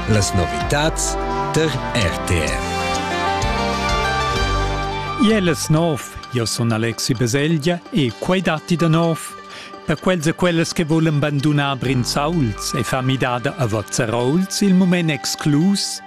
Las novitads tar RTR. Iel es nov, io sun Alexi Beseglia e quai datti da nov per quels e quellas che volen bandunar Brinzauls e far midada a Vozzerouls il mument exclus.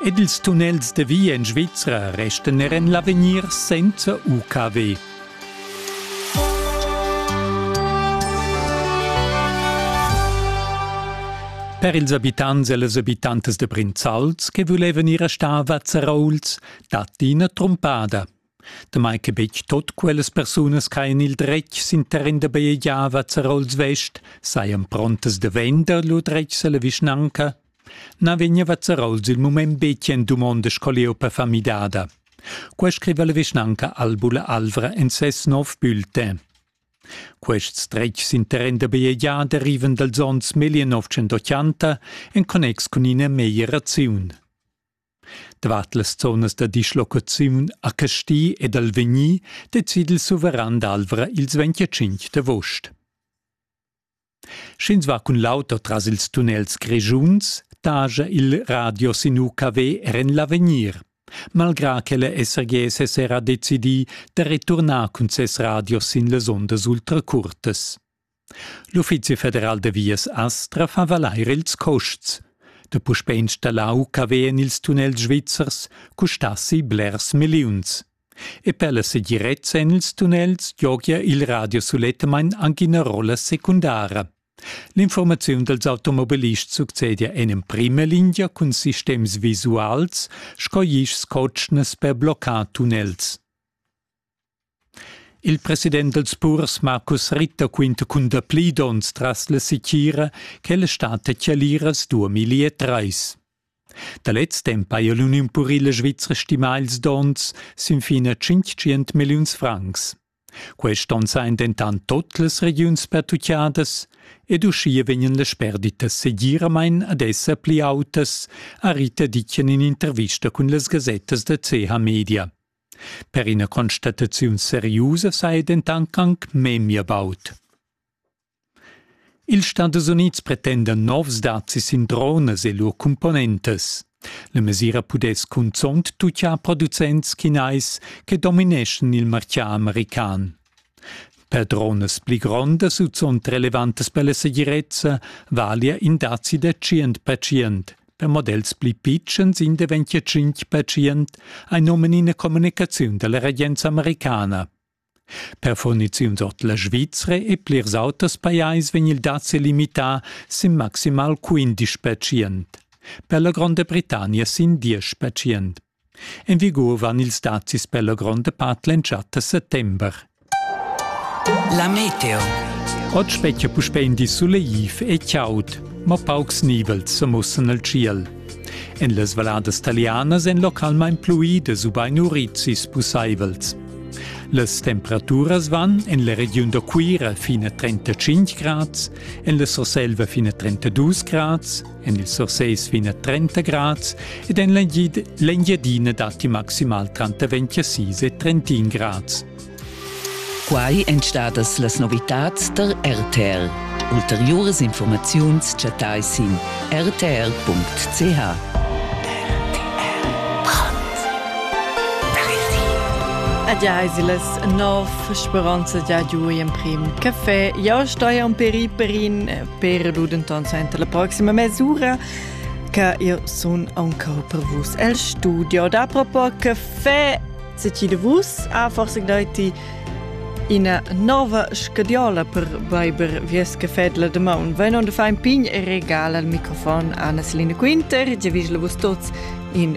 Ed ils tunnels de via in Svizzera restan er en l'avegnir senza UKW. Per ils abitants e las abitantas de Brinzals che vulevan ir a star a Vazzarouls datti ina trumpada. Damai che betg tot quellas persunas caen il dretg sin terren da bajegiar a Vazzarouls Vest, sajan prontas de vender lur dretg alla vischnanca Na vegneva Zeraus il mument betg en dumondas co leu per far midada. Quei scriva la vischnanca Albula Alvra en ses nov bulletin. Quests dretgs interren da BEA derivan dals onns 1980 en connex cun ina meglieraziun. Davart las zonas da dislocaziun a Casti ed Alvegni decide il suveran d'Alvra ils 25 d'avost. Sch'ins va cun l'auto tras ils tunnels grischuns, taja il radio sin UKW er en l'avegnir. Malgrà che la SRG sez era decidì da returnar cun ses radio sin las ondas ultracurtas. L'Uffizi federal da vias Astra fa valair ils custs. Da puspè installar UKW en ils tunnels svizzers custassi blers milliuns. E per la segirezza en ils tunnels giogia il radio sulettamain anche ina rolla secundara. L'informaziun dals automobilists succedia en emprima lingia cun sistems visuals sco ischs cotschnas per bloccar tunnels. Il president dals purs Markus Ritter quinta cun dapli donns tras la sitgira che la stat da Chialiras 2003. Da lez temp haja l'uniun purila svizra stimà ils donns sin fin a tschintgient milliuns francs. Quest onn sajan dentant tut las regiuns pertutgadas ed uschia vegnan las sperditas segiramain ad esser pli autas, ha Rita Dicken in intervista cun las gasettas da CH Media. Per ina constataziun seriusa saja dentant anc memia baud. Ils Stadus Unids pretendan novs dazis sin dronas e lur cumponentas. La mesira pudess cunzont tutgia producents chinais che domineschan il martgà american. Per dronas pli grondas u zunt relevantas per la segirezza valia in dazi da 100%. Per models pli pitschens, in da 25%, ha nomen ina communicaziun dalla regenza americana. Per furniziuns ord la Svizra e plirs auters pajais vegn il dazi limità sin maximal quindisch pertschient, per la Gronda Britannia sin diesch pertschient. En vigur van ils dazis per la gronda part l'entschatta settember. La meteo. Oggi specchia puspè in di suleiv e chaud, ma paucs nivels sa mussan al ciel. En las valladas talianas èn localmain pluidas ubain urizis pussaivels. Las temperaturas van en la regiun da Cuira fin a 35 grads, en la Surselva fin a 32 grads, en il Surses fin a 30 grads ed en l'Engiadina datti maximal tranter 26 e 31 grads. Quai èn stadas las novitads tar RTL. Ulteriuras infurmaziuns chattais sin rtr.ch. Adiaiselas nov speranza da giu emprim café. Ja stoi am per perin per ludenton senta la proxima mesura che io sun anche per vus el studio da propo café Se ti de vus ha forse daiti ina nova scadiola per beiber vies cafetla de maun. Vai non de fa in pign e regal al microfon Anna Selina Quinter, ge vis la vus tots in